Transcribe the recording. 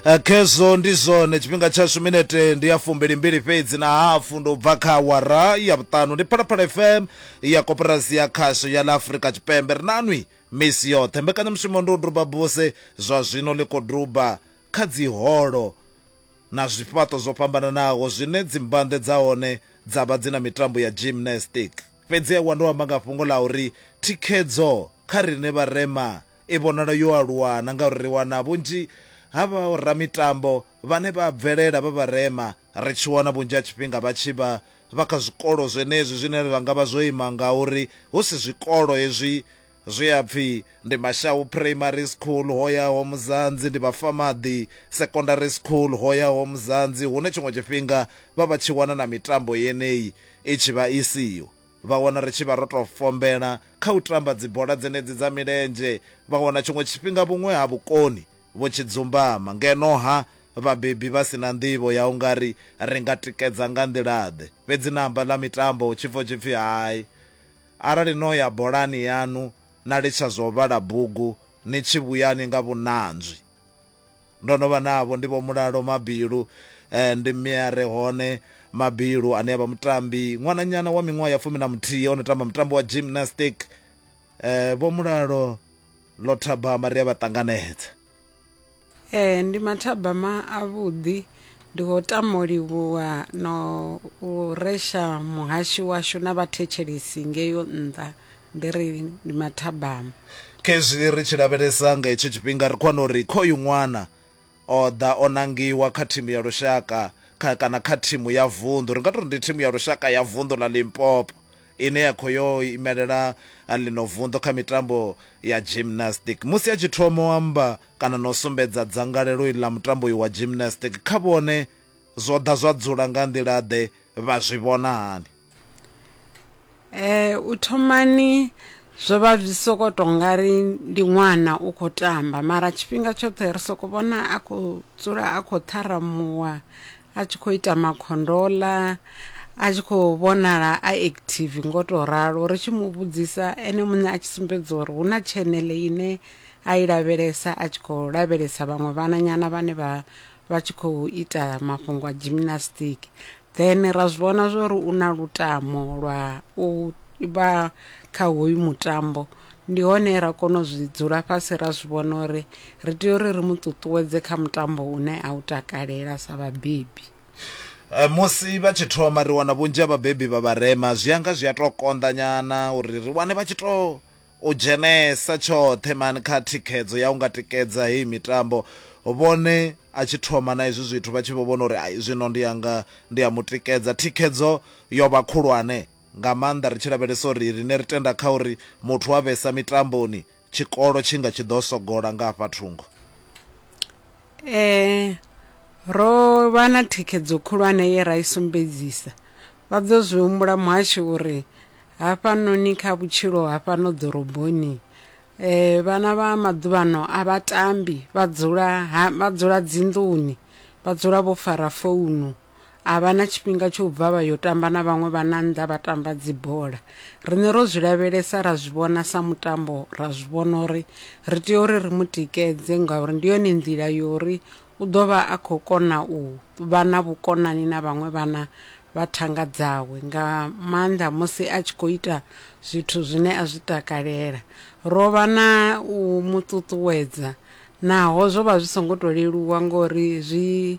Eh, khezwo ndi zwone tshifhinga tshashu minete ndi ya fumbili mbili fhedzi na hafu ndo bva kha awara ya vhuṱanu ndi phalaphala fm ya koporasi ya khasho ya ḽa afurika tshipembe ri nanwi misi yoṱhe mbekanyamushumo ndi u duba buse zwa zwino ḽi khou duba kha dziholo na zwifhaṱo zwo fhambananaho zwine dzimbande dza hone dza vha dzi na mitambo ya gymnastic fhedzi ewa ndo amba nga fhungo ḽa uri thikhedzo kha rine vharema I vhonala yo aluwa na ngauri ri wana vhunzhi ha vhoramitambo vhane vha bvelela vha vharema, ri tshi wana vhunzhi ha tshifhinga vha tshi vha vha kha zwikolo zwenezwi zwine zwa nga vha zwo ima ngauri hu si zwikolo hezwi zwi a pfi ndi Mashau Primary School, ho yaho Muzanzi, ndi Vhafamaḓi Secondary School, ho yaho Muzanzi, hune tshiṅwe tshifhinga vha vha tshi wana na mitambo yeneyi i tshi vha i siho. Vha wana ri tshi vha ro tou fombela kha u tamba dzibola dzenedzi dza milenzhe, vha wana tshiṅwe tshifhinga vhuṅwe ha vhukoni vho tshi dzumbama. Ngeno-ha, vhabebi vha si na nḓivho ya u nga ri ri nga tikedza nga nḓila-ḓe. Fhedzi na amba ḽa mitambo hu tshi pfa hu tshi pfi, Hai, arali no ya bolani yaṋu na litsha zwa u vhala bugu, ni tshi vhuyani nga vhunanzwi. Ndo no vha navho ndi Vho Mulalo Mabilu, ndi mme a re hone Mabilu ane a vha mutambi, ṅwananyana wa miṅwaha ya fumi na muthihi o no tamba mutambo wa gymnastic. Vho Mulalo ḽo thabama ri a vha ṱanganedza. Ee, ndi mathabama avhuḓi, ndi khou tama u livhuwa na u resha muhashi washu na vhathetshelesi ngeyo nnḓa. Ndi ri ndi mathabama. Khezwi ri tshi lavhelesa nga hetsho tshifhinga, ri khou wana uri khoyu ṅwana o ḓa o nangiwa kha thimu ya lushaka kha kana kha thimu ya vunḓu, ri nga tou ri ndi thimu ya lushaka ya vunḓu ḽa Limpopo ine ya khou yo imelela ḽino vunḓu kha mitambo ya gymnastic. Musi a tshi thoma u amba kana na u sumbedza dzangalelo iḽi ḽa mutambo uyu wa gymnastic kha vhone, zwo ḓa zwa dzula nga nḓila-ḓe? Vha zwi vhona hani? Eh u thomani zwo vha zwi soko to nga ri ndi ṅwana u kho tamba mara tshifhinga tshoṱhe ri soko vhona a kho dzula a kho ṱharamuwa a tshi kho ita makhondoḽa a tshi kho vhonala a active ngo to ralo ri tshi mu vhudzisa ene muṋe a tshi sumbedza uri hu na tshenele ine a i lavhelesa a tshi kho lavhelesa vhaṅwe vhananyana vhane vha vha tshi khou ita mafhungo a gymnastic Then ra zwi vhona zwori u na lutamo lwa u vha kha hoyu mutambo ndi hone ra kona u zwi dzula fhasi ra zwi vhona uri ri tea uri ri mu ṱuṱuwedze kha mutambo une a u takalela sa vhabebi. Eh, musi vha tshi thoma ri wana vhunzhi ha vhabebi vha vharema zwi anga zwi a tou konḓa nyana uri ri wane vha tshi tou U dzhenesa tshoṱhe man kha thikhedzo ya u nga tikedza heyi mitambo. Vhone a tshi thoma na hezwi zwithu vha tshi vho vhona uri ai zwino ndi a nga ndi a mu tikedza. Thikhedzo yo vha khulwane nga maanḓa ri tshi lavhelesa uri riṋe ri tenda kha uri muthu wa vhesa mitamboni tshikolo tshi nga tshi ḓo sogola nga hafha thungo. Ee, ro vha na thikhedzo khulwane ye ra i sumbedzisa. Vha ḓo zwi humbula muhashi uri Hafhanoni kha vhutshilo ha fhano ḓoroboni eh, vhana vha maḓuvhano a vha tambi vha dzula ha, vha dzula dzinḓuni vha dzula vho fara founu a vha na tshifhinga tsho u bva vha yo tamba na vhaṅwe vha na nnḓa vha tamba dzibola riṋe ro zwi lavhelesa ra zwi vhona sa mutambo ra zwi vhona uri ri tea uri ri mu tikedze ngauri ndi yone nḓila yo uri U ḓo vha a khou kona u vha na vhukonani na vhaṅwe vhana vha thanga dzawe, nga maanḓa musi a tshi khou ita zwithu zwine a zwi takalela. Ro vha na u mu ṱuṱuwedza naho zwo vha zwi songo tou leluwa ngori zwi